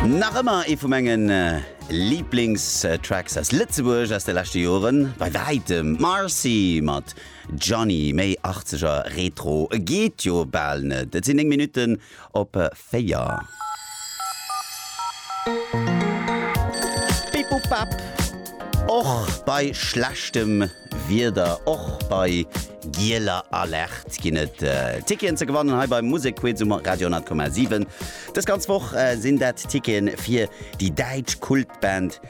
Nach ëmmer ee vu menge Liblingstracks aus Lëtzebuerg aus de leschte Joren, bei wäitem. Marcy mat Johnny, méi Achtzeger Retro geet jo bal net. Et sinn 9 Minutten op 4. Bip bop bap, och bei schlechtem. Wieder och bei gieler Alerte ginn et Ticketen ze gewannen hei beim Musekquiz um Radio 10,7. Dës ganz Woch sinn dat Ticketen fir déi däitsch Kultband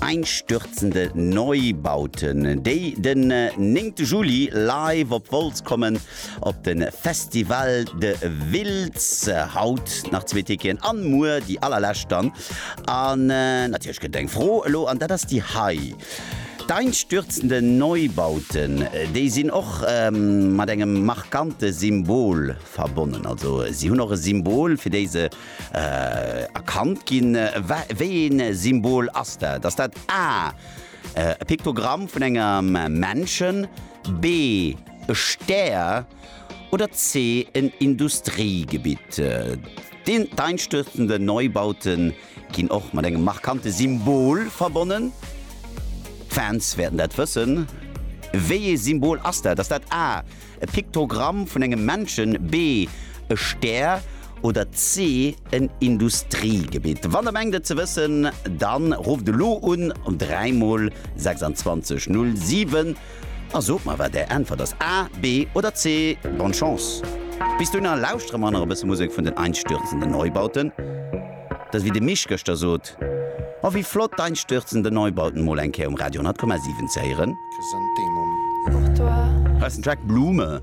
Einstürzende Neubauten, déi den néngte Juli live op Wolz kommen op de Festival de Wiltz. Haut nach zwee Ticketen an muer déi allerlescht dann. An natierlech gëtt et eng Fro elo an dat ass déi hei. D'einstürzende Neubauten, déi sinn och mat engem markante Symbol verbonnen. Also si hunn och e Symbol, fir déi se erkannt ginn. Wéi een Symbol ass dat? Ass dat A, e Piktogramm vun engem Menschen, B, e Stär oder C, en Industriegebitt? D'einstürzende Neubauten. ginn och mat engem markante Symbol verbonnen. D'Fans wäerten dat wëssen. Wéi ee Symbol ass dat? Ass dat A, e Piktogramm vun engem Menschen, B, e Stär oder C, en Industriegebitt? Wann der mengt et ze wëssen, dann rufft elo un um 3 mol 26 07. A sot mer wat Är Äntwert ass, A, B oder C. Bonne Chance! Bis dohinner lauschtere mer nach e bësse Musek vun den Einstürzende Neubauten. Dass, wéi de Misch gëschter sot, Oh, wéi flott d'Einstürzende Neubauten mol eng Kéier um Radio 100,7 ze héieren. Heiansdo ass den Track Blume.